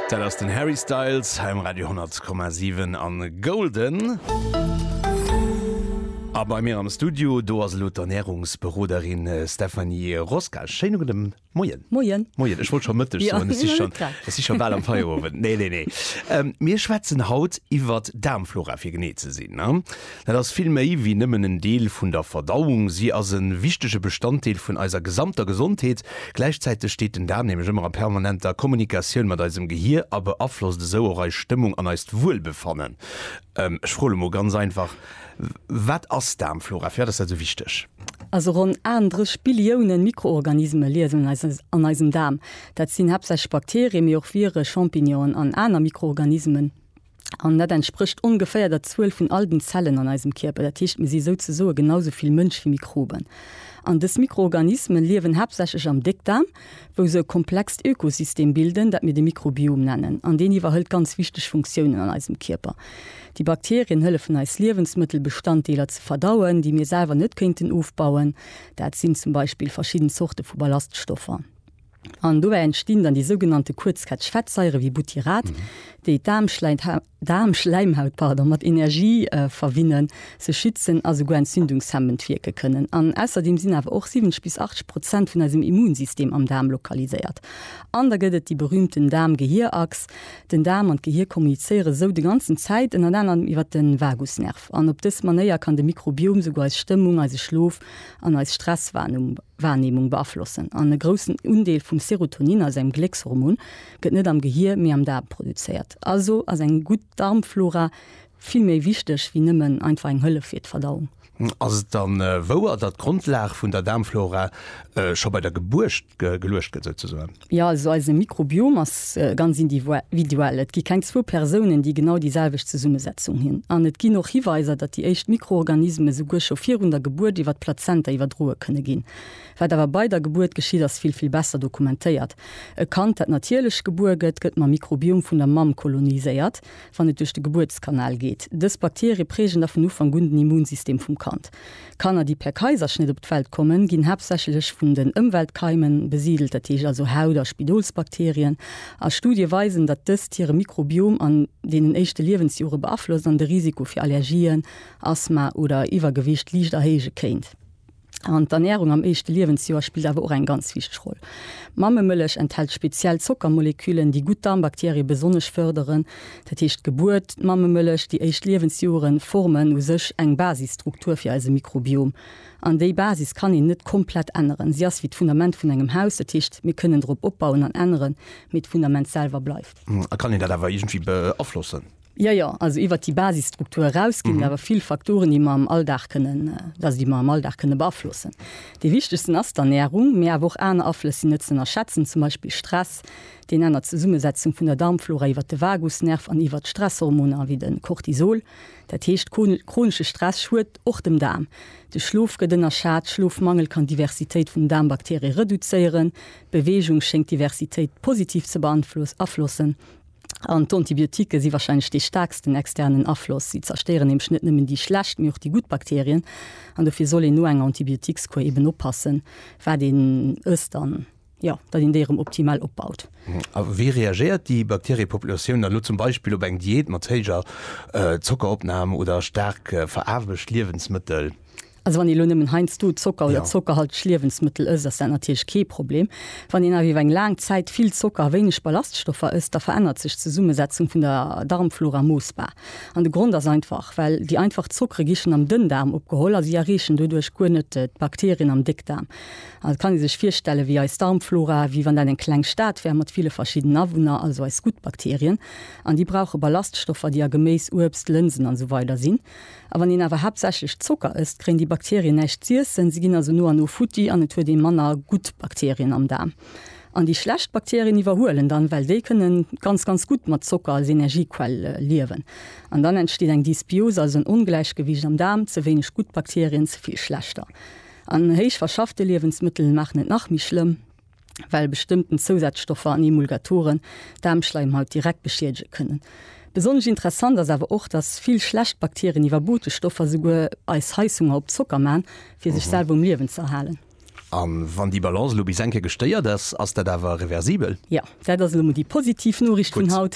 Dat ass den Harry Styles hei um Radio 10,7 an Golden. A bei mir am Studio, do ass elo d'Ernährungsberoderin Stephanie Rosca. Schéine gudde Moien. Moien. Moien, ech wollt scho Mëtteg soen, ech si schonn, ech si scho bal am Feierowend. Nee, nee, nee. Mir schwätzen haut iwwert d'Daarmflora, fir genee ze sinn. Dat ass vill méi wéi nëmmen en Deel vun der Verdauung, si ass e wichtege Bestanddeel vun eiser gesamter Gesondheet. Gläichzäiteg steet den Daarm nämlech ëmmer a permanenter Kommunikatioun mat eisem Gehier a beaflosst esou och eis Stëmmung an eist Wuelbefannen. Ech froe lo mol ganz einfach, Wat ass Daarmflora? Firwat ass dat esou wichteg? Also ronn 38 Billioune Mikroorganisme liewen an eisem Daarm. Dat sinn haaptsächlech Bakterie, mee och Vire, Champignonen an aner Mikroorganismen. An dat entsprécht ongeféier der Zuel vun all den Zellen an eisem Kierper. Dat heescht, mir si souzesoe genau sou vill Mënsch wéi Mikroben. An dës Mikroorganisme liewen haaptsächlech am Déckdaarm, wou se e komplext Ökosystem bilden, dat mir de Mikrobiom nennen. An deen iwwerhëlt ganz wichteg Funktiounen an eisem Kierper. Déi Bakterien hëllefen eis Liewensmëttelbestanddeeler ze verdauen, déi mir selwer net kéinten ofbauen. Dat sinn zum Beispill verschidden Zorte vu Ballaststoffer. An dobäi entstinn dann déi sougenannte Kuerzketch-Fettsaiere wéi Butyrat, déi d'Daarmschläimhaut mat Energie verwinnen, se schützen a souguer entzündungshemmend wierke kënnen. An ausserdeem sinn awer och 70 bis 80 Prozent vun eisem Immunsystem am Daarm lokaliséiert. An da gëtt et déi berühmten Daarm-Gehir-Achs, Den Daarm an d'Gehir kommunizéiere sou de ganzen Zäit, ënnert anerem iwwert de Vagusnerv. An op dës Manéier kann de Mikrobiom souguer eis Stëmmung, eise Schlof an eis Stresswahrnehmung beaflossen an e groussen Undeel vum Serotonin, also engem Gléckshormon, gëtt net am Gehir, mee am Daarm produzéiert. Also ass eng gutt Darmflora vill méi wichteg wéi nëmmen einfach eng Hëllef fir d'Verdauung. Ass et dann wouer, datt d'Grondlag vun der Daarmflora scho bei der Gebuert geluecht gëtt souzesoen? Jo, also eise Mikrobiom ass ganz individuell. Et gi keng zwou Persounen, déi genau déi selwecht Zesummesetzung hunn. An et ginn och Hiweiser, datt déi éischt Mikroorganisme souguer scho virun der Gebuert iwwer d'Plazenta iwwerdroe kënne ginn. Wat awer bei der Gebuert geschitt, ass vill, vill besser dokumentéiert. E Kand, dat natierlech gebuer gëtt, gëtt mam Mikrobiom vun der Mamm koloniséiert, wann et duerch de Gebuertskanal geet. Dës Bakterie prägen da vun Ufank un den Immunsystem vum Kand. D'Kanner, déi per Kaiserschnitt op d'Welt kommen, ginn haaptsächlech vun den Ëmweltkeimen besidelt, dat heescht also Haut a Spidolsbakterien, a Studie weisen, datt dëst hire Mikrobiom an deenen éischte Liewensjore beaflosst an de Risiko fir Allergien, Asthma oder Iwwergewicht liicht erhéije kéint. An d'Ernärung am éischte Liewensjoer spillt awer och eng ganz wichteg Roll. Mammemëllech enthält speziell Zockermoleküllen, déi gutt Darmbakterie besonnesch fërderen. Dat heescht, d'Gebuert, d'Mammemëllech, déi éischt Liewensjoere formen u sech eng Basisstruktur fir eise Mikrobiom. An déi Basis kann een net komplett änneren. Si ass wéi d'Fundament vun engem Haus. Dat heescht, mir kënnen drop opbauen an änneren, mee d'Fundament selwer bleift. A kann een dat awer iergendwéi beaflossen? Jo, jo. Also iwwert déi Basisstruktur eraus ginn et awer vill Faktoren, déi mer am Alldag kënnen, also déi mer am Alldag kënnen beaflossen. Dee wichtegsten ass d'Ernärung, mee awer och aner Aflëss sinn net ze ënnerschätzen, zum Beispill Stress, Deen ännert d'Zesummesetzung vun der Darmflora iwwert de Vagusnerv an iwwert Stresshormoner wéi de Cortisol. Dat heescht, chronesche Stress schuet och dem Daarm. De Schlof gëtt ënnerschat, Schlofmangel kann d'Diversitéit vun den Daarmbakterie reduzéieren. Beweegung schéngt d'Diversitéit positiv ze beaflossen. An d'Antibiotike si warscheinlech dee staarksten externen Afloss. Si zerstéieren nämlech net nëmmen déi schlecht, mee och déi gutt Bakterien. An dofir soll een no enger Antibiotikskuer eben oppassen, wat een ësst. jo, datt een déi erëm optimal opbaut. A wéi reagéiert déi Bakteriepopulatioun dann elo zum Beispill op eng Diät mat héijer Zockeropnam oder staark veraarbescht Liewensmëttel? Also wann ee lo nëmmen heiansdo Zocker oder zockerhalteg Liewensmëttel ësst, ass dat natierlech kee Problem. Wann een awer iwwer eng laang Zäit vill Zocker a wéineg Ballaststoffer ësst, da verännert sech d'Zesummesetzung vun der Darmflora moossbar. An de Grond ass einfach, well déi einfach Zockere gi schonn am Dënndaarm opgeholl a si erreechen doduerch guer net d'Bakterien am Déckdaarm. An et kann ee sech virstellen, wéi eis Darmflora, wéi wann dat eng kleng Stad wär mat ville verschiddenen Awunner, also eis gutt Bakterien. An déi brauche Ballaststoffer, déi a Geméis, Uebst, Lënsen an esou weider sinn. A wann een awer haaptsächlech Zocker ësst, kréien déi Bakterien näischt z'iessen. Si ginn also no an no futti an et huet ee manner gutt Bakterien am Daarm. An déi schlecht Bakterien iwwerhuelen dann, well déi kënne ganz, ganz gutt mat Zocker als Energiequell liewen. An dann entsteet eng Dysbiose, also en Ongläichgewiicht am Daarm, ze wéineg gutt Bakterien, ze vill schlechter. An héich verschaffte Liewensmëttel maachen et nach méi schlëmm, well bestëmmten Zousazstoffer an Emulgatoren d'Daarmschleimhaut direkt beschiedege kënnen. Besonnesch interessant ass awer och, dass vill schlecht Bakterien iwwer Botesstoffer esouguer eis Heisshunger op Zocker man, fir sech selwer um Liewen ze erhalen. A wann déi Balance elo bis eng Kéier gestéiert ass, ass dat awer reversibel? Jo. Dat ass elo mol déi positiv Noriicht vun haut,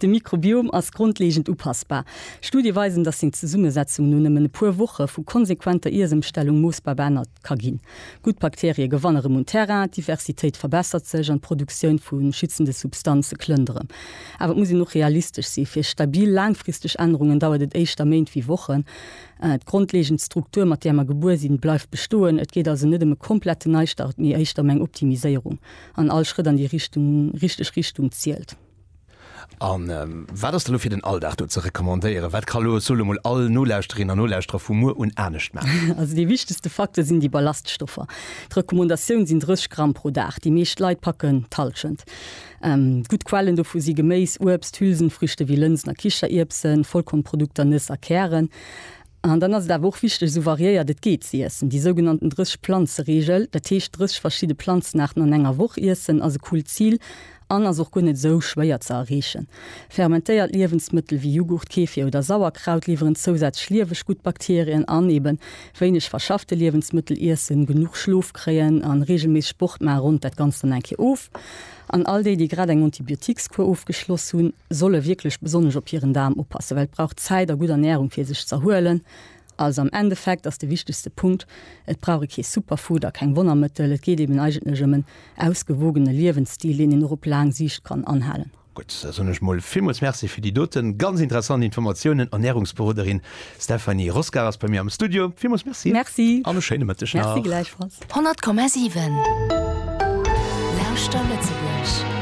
De Mikrobiom ass grondlegend upassbar. Studie weisen, datt seng Zesummesetzung no nëmmen e puer Woche vu konsequenter Iessëmstellung moossbar beännert ka ginn. Gutt Bakterie gewanne rëm un Terrain, d'Diversitéit verbessert sech an d'Produktioun vu schützende Substanze klëmmt erëm. Awer et muss een och realistesch sinn, Fir stabil laangfristeg Ännerungen dauert et éischter Méint wéi Wochen. D'grondlegend Struktur, mat där mer gebuer sinn, bleift bestoen. Et geet also net ëm e komplette Neistart, mee éischter ëm eng Optimiséierung. An all Schrëtt an déi Richtung, richteg Richtung zielt. A wat ass da lo fir den Alldag do ze recommandéieren? Wat ka lo, ech soe lo mol, all Nolauschterin an Nolauschterer vu muer un anescht maachen? Also dee wichtegste Facteur sinn déi Ballaststoffer. D'Recommandatioun sinn 30 Gramm pro Dag. Déi meescht Leit packen d'Hallschent. Gutt Quellen dovu si Geméis, Uebst, Hülsenfrüchte wéi Lënsen a Kichererbsen, Vollkornprodukter, Nëss a Kären. An dann ass et awer och wichteg, esou variéiert et geet ze iessen. Déi sougenannten 30 Planze-Reegel, dat heescht 30 verschidde Planzenaarten an enger Woch iessen, ass e coolt Zil an ass och guer net esou schwéier ze erreechen. Fermentéiert Liewensmëttel wéi Jughurt, Kefir oder Sauerkraut liwweren zousätzlech lieweg gutt Bakterien an. Eeben wéineg verschaffte Liewensmëttel iessen, genuch Schlof kréien an reegelméisseg Sport maachen ronnt dat Ganzt dann eng Kéier of. An all déi, déi grad eng Antibiotiques-Kuer ofgeschloss hunn, solle wierklech besonnesch op hiren Daarm oppassen, well et brauch Zäit a gutt Ernärung fir sech z'erhuelen. Also am Endeffekt ass de wichtegste Punkt, et brauch ee kee Superfood a keng Wonnermëttel, et geet eben eigentlech ëm en ausgewogene Liewensstil, deen een och op laang Siicht kann anhalen. Gutt, da soen ech mol villmools Merci fir déi doten ganz interessant Informatiounen. Ernärungsberoderin Stephanie Roscar ass bei mir am Studio. Villmools Merci Merci. An e schéine Mëtteg nach. Merci gläichfalls. 100,7 Lauschter Lëtzebuerg!